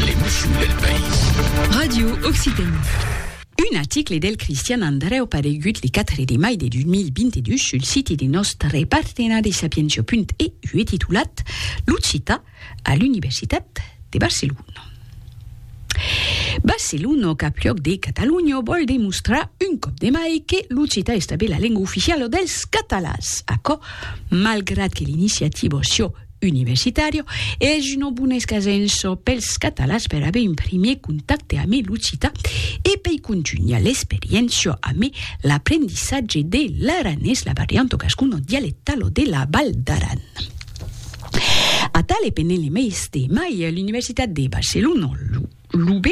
L'emotion del país. Radio Occitanie. Un article del Cristian Andrèu paregut le 4 de mai de 2022 sul site de nòstre partenari sapientia.eu e titulat L'occitan a l'Universitat de Barcelona. Barcelona, capluòc de Catalonha, vòl demostrar un còp de mai que l'occitan es tanben la lenga oficiala dels catalans. Aquò, malgrat que l'iniciativa Sciò universitario, es una bona escasenço pels catalans per aver un primier contacte ame l'occitan e pei contunhar l'experiéncia ame l'aprendissatge de l'aranés, la varianto gascono dialectalo de la Val d'Aran. Atale penele meis de mai l'Universitat de Barcelona, lo. L'UB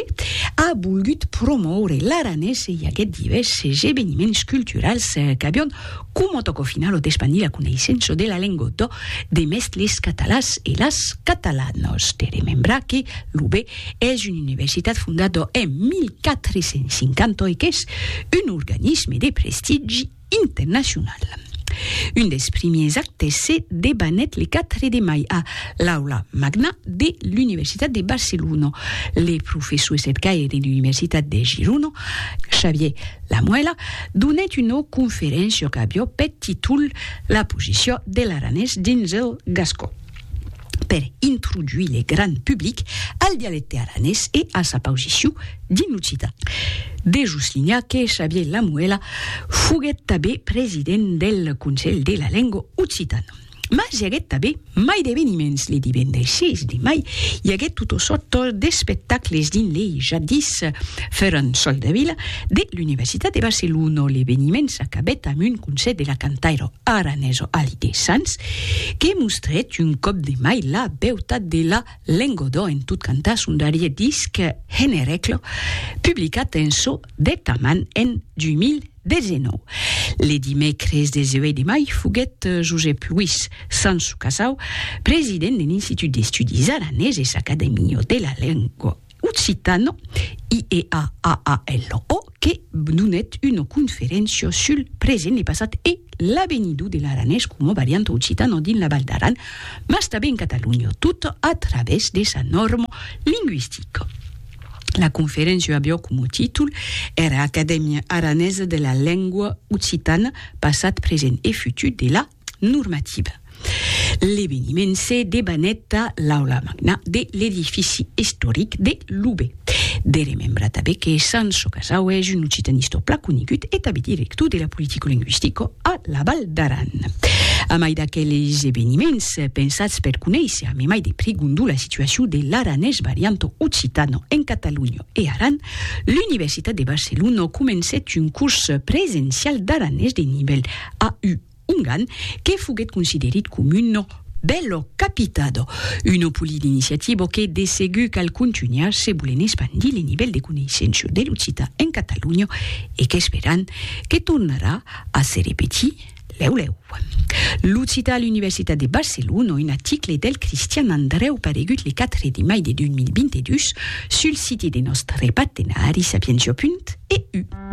a volgut promòure l'aranés e i aguèt divèrses eveniments culturals qu'avián coma tòca au final d'espandir la coneissença de la lengua dò de mès les catalans e las catalanas. De remembrar que l'UB es una universitat fondada en 1450 e qu'es un organisme de prestigi, internacional. Un dels primiers actes se debanèt le 4 de mai a l'Aula Magna de l'Universitat de Barcelona. Le professor estercaire de l'Universitat de Girona, Xavier Lamuela, donèt una conferéncia qu'aviá peth títol La posició de l'aranés dins el gascon. per introduir le grand public al dialecte aranés e a sa pausiciu dins l'occitan. De soslinhar que Xavier Lamuela foguèt tabé president del Conselh de la Lengua Occitana. Mas i aguèt tabé mai d'eveniments, le divendres 6 de mai i aguèt tota sòrta d'espectacles dins le jadis Ferran Soldevila de l'Universitat de Barcelona. L'eveniment s'acabèt amb un concèrt de la cantaira aranés o alidesans, que mostrèt un còp de mai la beutat de la Lengodò en tot cantar son darrier disc Henereclo, publicat en çò deth aman en 2019. Le dimècres 18 de mai foguèt Josep Luís Sanço-Casau, president de l'Institut d'Estudis Araneses Acadèmia de la Lenga, Occitano, IEAAALO, que donèt una conferéncia sul present, le passat e l'avenidor de l'aranés coma varianta occitana dins la Val d'Aran, mas tanben en Catalonha, tot a través de sa nòrma lingüistica. La conferéncia aviá coma títol era Acadèmia aranesa de la lengua occitana, passat, present e futur de la normativa. L'eveniment se debanèt a l'aula magna de l'edifici istoric de Loubet. De remembrar tanben que Sanço Casau es un occitanistor plan conegut e tanben director de la politicolinguistica a la Val d'Aran. A mai d'aqueles eveniments pensats per conéisser a memai de prigondu la situacion de l'aranés varianto occitano en Catalonha e Aran, l'Universitat de Barcelona comencèt un curs presencial d'aranés de nivèl a u ongan que foguet considerit com uno bello capitado, uno poli d'iniciativo que de segur cal contunhar se volen espandir le nivèl de coneissenço de l'occitan en Catalonha e qu'esperan que tornarà a se repetir lèu lèu. L'occitan a l'Universitat de Barcelona, un article del Cristian Andrèu paregut le 4 de mai de 2022 sul siti de nòstre partenari Sapientiapunt EU.